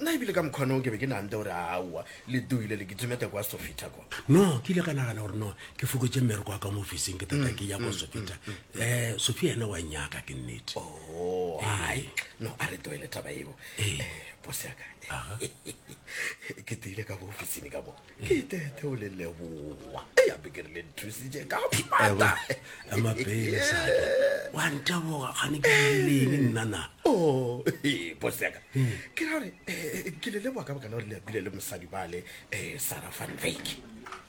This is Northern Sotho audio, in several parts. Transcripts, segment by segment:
Nna ebile ka mokgwanoo ke be ke nante gore aowa, le doile le kitimete kwa Sofita kwa. No, ke ile ka nagana gore no, ke fokotše mmereko wa ka mo ofising ke tata ke ya kwa Sofita. Um, Sofia ene wa nyaka, ke nnete. Oh, hai, no, a re tloele taba eo. Eh, boss ya ka. Ke tile ka mo ofisini ka mo. le tete o le leboa ya beke re le nthusitše ka pata amapele sake wa nteboga gane ke leng nnana o oh, boseka hmm. ke ra gore eh, ke le leboa ka bokana gore le apile le mosadi bale eh, sara van vek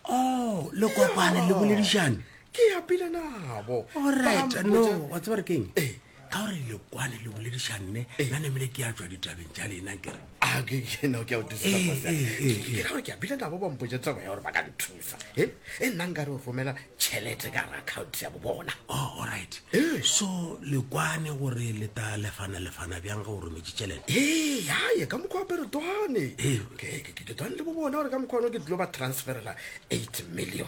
o oh, le kopane le boledišane ke apile nabo orit no wa tseba re keng eh. ka gore le kwane le bolediša nne eh. na nemele ke a tswa ditabeng tša lena kere ah, ke a bile nabo bampotse tsebo ya gore ba ka nthusa e nna nka re o romela tšhelete ka re account ya bobona oh, allright so le kwane gore le ta lefana lefana bjang ga o rometse tšhelete ee yaye ka mokgwa apere twane ke twane le bobona gore ka mokgwa one ke dilo ba transferela eight million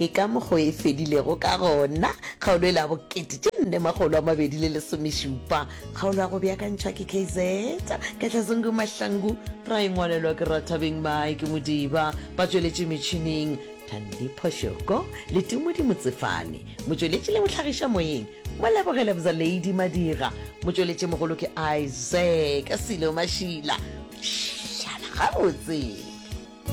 ke ka mokgo e fedilego ka gona kgaolo e la bokete tše nne magolo a mabedi le lesomešupa kgaolo ya go beakantšhwa ke kz katlazongu mahlangu ra e ngwalelwa ke rathabeng mae ke modiba ba tsweletše metšhineng thandi phošoko le tumodi motsefane motsweletši le mohlagiša moyeng mo lebogele bza lady madira motsweletši mogolo ke isaac selo mašila šala gabotse